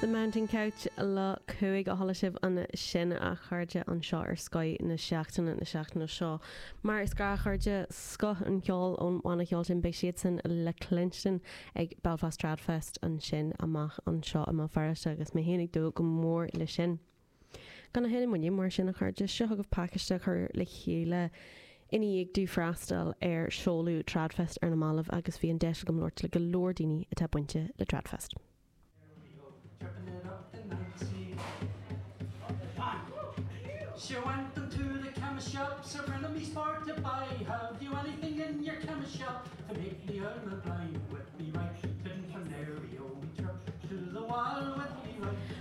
The Mountain Goat le Cúig a chuala sibh ansin a chairde anseo ar Scoth na Seachtaine na seachtaine seo. Mar is gnách a chairde, scoth an cheoil ón bhanna cheoil sin, beidh siadsan le cluinstin ag Belfast Tradfest ansin amach anseo i mBéal Feirste agus mé féin ag dúil go mór leis sin. Gan a thuilleadh moille, mar sin, a chairde, seo chugaibh pacáiste a chur le chéile i ndiaidh domh freastal ar seoladh Tradfest ar na mallaibh agus bhí an deis agam labhairt le go leor daoine atá bainte le Tradfest.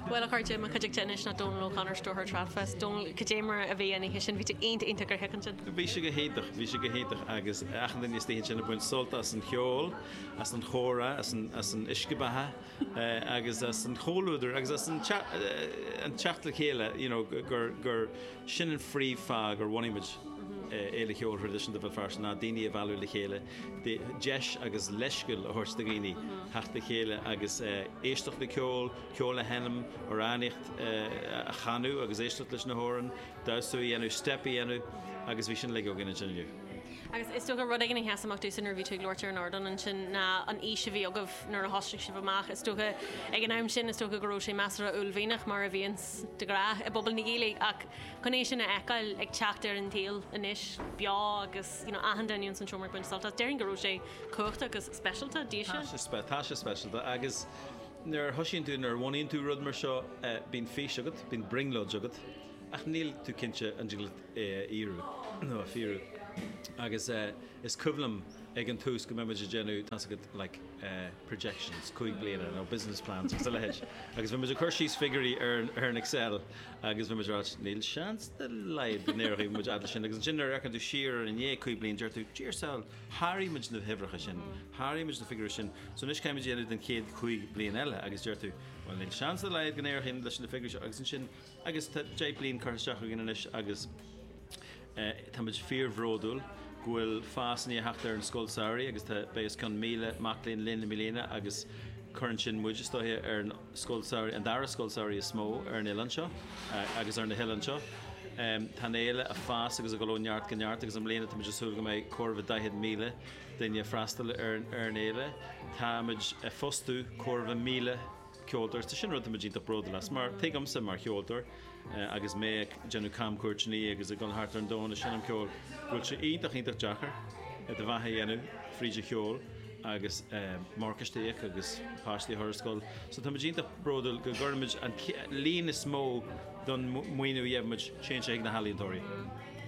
Bhuel, a chairde, i mo chuideachta anois ná Donal O'Connor, Stiúrthóir Tradfest. Donal, cad é mar a bhí an oíche sin? Bhí tú iontach, iontach gnóthach ansin. Bhí sé go hiontach, bhí sé go hiontach agus achan duine istigh ansin ag baint sult as an cheol, as an chomhrá, as an uisce beatha agus as an chomhluadar agus as an teacht le chéile, you know, gur, gur sin an phríomhfáth gur bhunaigh muid Fhéile Cheoil Thraidisiúnta Bhéal Feirste ná daoine a mhealladh le chéile, deis agus leithscéal a thabhairt do dhaoine theacht le chéile agus éisteacht le ceol, ceol a sheinm, amhránaíocht a chanadh agus éisteacht leis na hamhráin, damhsa a dhéanamh, steip a dhéanamh agus bhí sin uilig againn ansin inniu. Agus is dócha rud éigin a sheas amach domhsa nuair a bhí tú ag labhairt ar an ardán ansin ná an fhís a bhí agaibh nuair a thosaigh sibh amach. Is dócha ag an am sin, is dócha go raibh sé measartha uaillmhianach, mar a bhíonns de ghnáth i bpobal na Gaeilge, ach chun é sin a fheiceáil ag teacht ar an tsaol anois, beo agus. Achan duine ins an seomra ag baint sult as. Déarfainn go raibh sé cumhachtach agus speisialta, daoibhse. Tá sé speisialta agus nuair a thoisíonn tú, nuair a bhunaíonn tú rud mar seo, bíonn fís agat, bíonn brionglóid agat ach níl tú cinnte an dtiocfadh é a fhíorú nó a fíorú. Agus is cuimhin liom ag an tús go mbíodh muid ag déanamh tá's agat like projections cúig bliana nó business plans agus a leithéid agus bhí muid ag cur síos figiúirí ar an Excel. Agus bhí muid ag ráit, níl seans dá laghad go n-éireoidh muid a fhad leis sin, agus ansin nuair a fhéachann tú siar air i ndiaidh cúig bliain deir tú, Dia ár sábháil, sháraigh muid na huimhreacha sin, sháraigh muid na figiúirí sin, so anois caithfidh muid é a dhéanamh don chéad chúig bliain eile, agus deir tú, bhuel níl seans dá laghad go n-éireoidh leis na figiúirí seo, agus ansin, agus tá deich bliain curtha isteach againn anois agus. Táimid fíorbhródúil go bhfuil fás i ndiaidh teacht ar an scoil samhraidh agus tá, beidh os cionn 1,000 mac léinn linn i mbliana agus cuireann sin muid, is dóiche, ar an scoil samhraidh, an dara scoil samhraidh is mó ar an oileán seo agus ar na hoileáin seo. Tá an fhéile ag fás agus ag dul ó neart go neart agus i mbliana táimid ag súil go mbeidh chóir a bheith 40,000 duine ag freastal ar an fhéile. Táimid ag fostú chóir a bheith 1,000 ceoltóir, is é sin rud táimid iontach bródúil as mar tuigimse mar cheoltóir agus mé ag déanamh camchuairteanna agus ag dul thart ar an domhan is ag seinm ceoil go bhfuil sé iontach iontach deacair do bheatha a dhéanamh fríd an cheol agus morgáiste a íoc agus páistí a chur ar scoil so táimid iontach bródúil go gcuirimid an líon is mó den mhaoiniú a gheibh muid téann sé chuig na healaíontóirí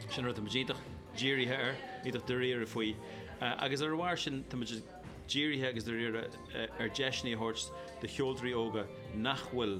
sin rud táimid iontach dírithe air iontach dáiríre faoi agus ar a bharr sin táimid dírithe agus dáiríre ar dheiseanna a thabhairt do cheoltóirí óga nach bhfuil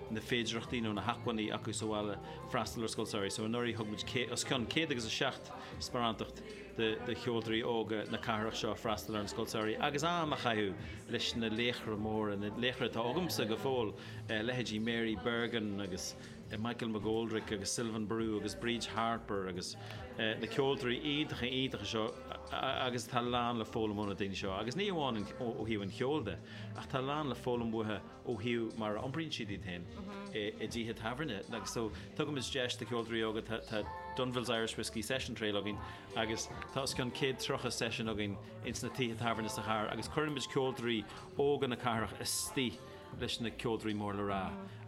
na féidearthachtaí nó na hacmhainní acu sa bhaile freastal ar scoil samhraidh. So anuraidh thug muid os cionn céad agus a seacht sparántacht do cheoltóirí óga na cathrach seo freastal ar an scoil samhraidh agus am a chaitheamh leis na laochra móra, na laochra atá agamsa go fóill, leithéidí Mary Bergin agus. Michael McGoldrick agus Sylvain Barou agus Bríd Harper agus na ceoltóirí iontacha, iontacha seo agus tá a lán le foghlaim ó na daoine seo agus ní amháin ó thaobh an cheoil de ach tá a lán le foghlaim uathu ó thaobh mar a iompraíonn siad iad féin i dtithe tábhairne agus so tugaimid deis do cheoltóirí óga tá Dunville's Irish Whiskey Session Trail againn agus tá os cionn 130 session againn ins na tithe tábhairne sa chathair agus cuirimid ceoltóirí óga na cathrach istigh leis na ceoltóirí mór le rá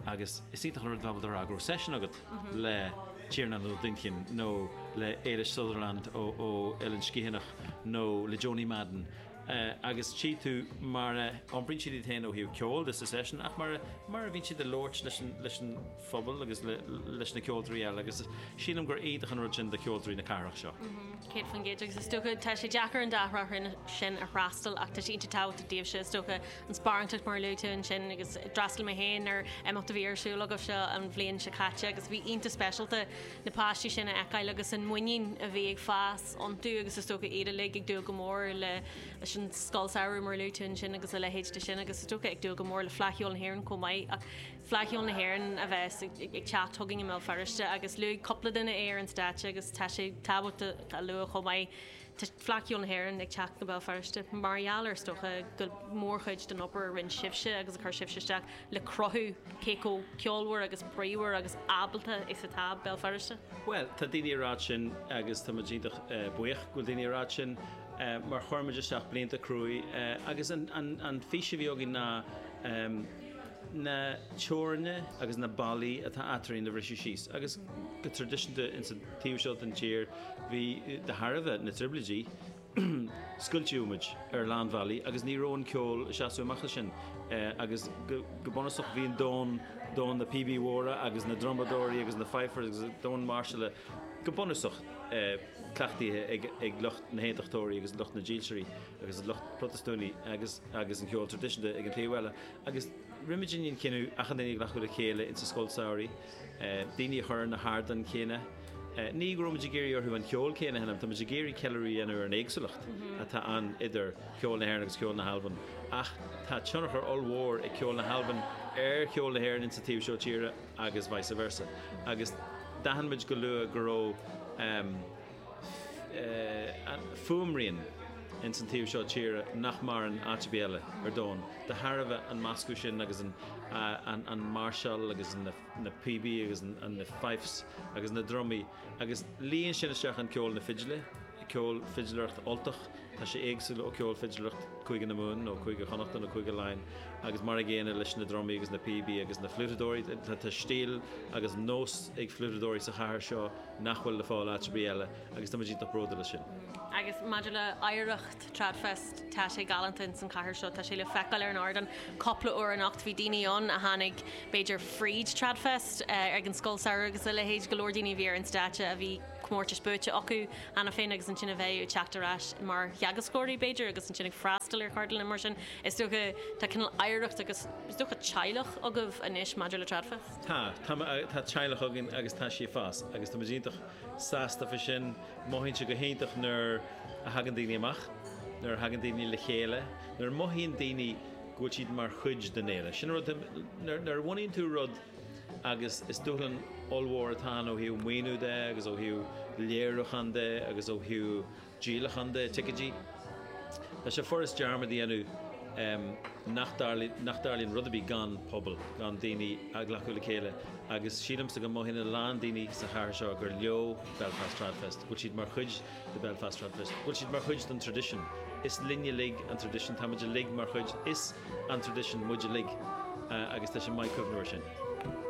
agus is iontach an rud dá bhfuil do fhreagra ó seisiún agat le Tiarnán Ó Duinnchinn nó le Ailis Sutherland ó Eilean Sgitheanach nó le Joanie Madden agus tchí tú mar a iompraíonn siad iad féin ó thaobh ceoil de sa seisiún ach mar a bhíonn siad ag labhairt leis an phobal agus leis na ceoltóirí eile agus sílim gur iontach an rud sin do cheoltóirí na cathrach seo. 100% agus is dócha tá sé deacair an dá thrá sin a fhreastal ach tá sé iontach tábhachtach daoibhse is dócha an sparánacht mar a luaigh tú ansin agus d'fhreastail mé féin ar imeacht a bhí ar siúl agaibhse an bhliain seo caite agus bhí sé iontach speisialta na páistí sin a fheiceáil agus an muinín a bhí ag fás iontu agus is dócha iad uilig ag dúil go mór le leis an scoil samhraidh mar a luaigh tú ansin agus a leithéid de sin agus is dócha ag dúil go mór le Fleadh Cheoil na hÉireann chomh maith ach Fleadh Cheoil na hÉireann a bheas ag ag teacht chugainn i mBéal Feirste agus luaigh cúpla duine é ar an stáitse agus tá sé tábhachtach a lua chomh maith Tá Fleadh Cheoil na hÉireann ag teacht go Béal Feirste mar gheall ar, is dócha, go mórchuid den obair a rinne sibhse agus a chuir sibhse isteach le cruthú cé chomh ceolmhar agus bríomhar agus ábalta is atá Béal Feirste. Bhuel, tá daoine ag rá sin agus tá muid iontach buíoch go bhfuil daoine ag rá sin mar chuir muid isteach blianta cruaidh agus an fís a bhí againn ná na teorainneacha agus na ballaí atá eadrainn a bhriseadh síos agus go traidisiúnta ins an Taobh seo den tír, bhí, de thairbhe na dtrioblóidí, scoilteadh muid ar a lán bealaí agus ní raibh an ceol ag seasamh amach as sin agus go bunúsach bhí an domhan, domhan na bpíobaí móra agus na drumadóirí agus na fifers agus domhan máirseála go bunúsach cleachtaithe ag lucht na haontachtóirí agus lucht na dílseoirí agus an lucht Protastúnaí agus agus an ceol traidisiúnta ag an taobh eile agus rinne muid an cinneadh achan duine a ghlacadh le chéile ins an scoil samhraidh daoine a chur ar na hardáin chéanna. Ní go raibh muid ag iarraidh orthu an ceol céanna a sheinm, tá muid ag iarraidh ceiliúradh a dhéanamh ar an éagsúlacht atá ann idir cheol na hÉireann agus cheol na hAlban. Ach tá tionchar ollmhór ag ceol na hAlban ar cheol na hÉireann insa taobh seo tíre agus vice versa. Agus d'aithin muid go luath go raibh. fuaimrian ins an taobh seo tíre nach maireann áit ar bith eile ar domhan, de thairbhe an meascadh sin agus an máirseáil agus na píobaí agus na fifes agus na drumaí agus líon sin isteach an cheol na fidle, ceol fidléireacht Ultach, tá sé éagsúil ó ceol fidléireacht Cúige na Mumhan nó Cúige Chonnacht nó Cúige Laighean agus mar an gcéanna leis na drumaí agus na píobaí agus na fliútadóirí, tá stíl agus nós ag fliútadóirí sa chathair seo, nach bhfuil le fáil áit ar bith eile agus táimid iontach bródúil as sin. Agus maidir le hoidhreacht Tradfest, tá sé galánta ins an chathair seo, tá sé le feiceáil ar an ardán cupla uair anocht. Bhí daoine ann a tháinig b'fhéidir fríd Tradfest, ag an Scoil Samhraidh agus a leithéid, go leor daoine a bhí ar an stáitse a bhí comórtais buaite acu cheana féin agus ansin a bheidh ag teacht ar ais mar theagascóirí b'fhéidir agus ansin ag freastal ar cheardlanna mar sin. Is dócha tá cineál oidhreacht agus is dócha teaghlach agaibh anois maidir le Tradfest? Tá. Tá, tá teaghlach againn agus tá sí ag fás agus tá muid iontach sásta faoi sin. Mothaímse go hiontach nuair a thagann daoine amach, nuair a thagann daoine le chéile, nuair a mothaíonn daoine go bhfuil siad mar chuid den fhéile. Sin an rud, nuair, nuair a bhunaíonn tú rud agus is dúshlán ollmhór atá ann ó thaobh maoiniú de agus ó thaobh léiriúcháin de agus ó thaobh, díolachán de ticéidí. Tá sé furast dearmad a dhéanamh nach dtarlaíonn rud ar bith gan pobal, gan daoine a ghlacadh le chéile agus sílimse go mothaíonn a lán daoine sa chathair seo gur leo Belfast Tradfest, go bhfuil siad mar chuid de Belfast Tradfest, go bhfuil siad mar chuid den traidisiún. Is linne uilig an traidisiún, táimid uilig mar chuid is an traidisiún muid uilig agus tá sé maith cuimhneamh air sin.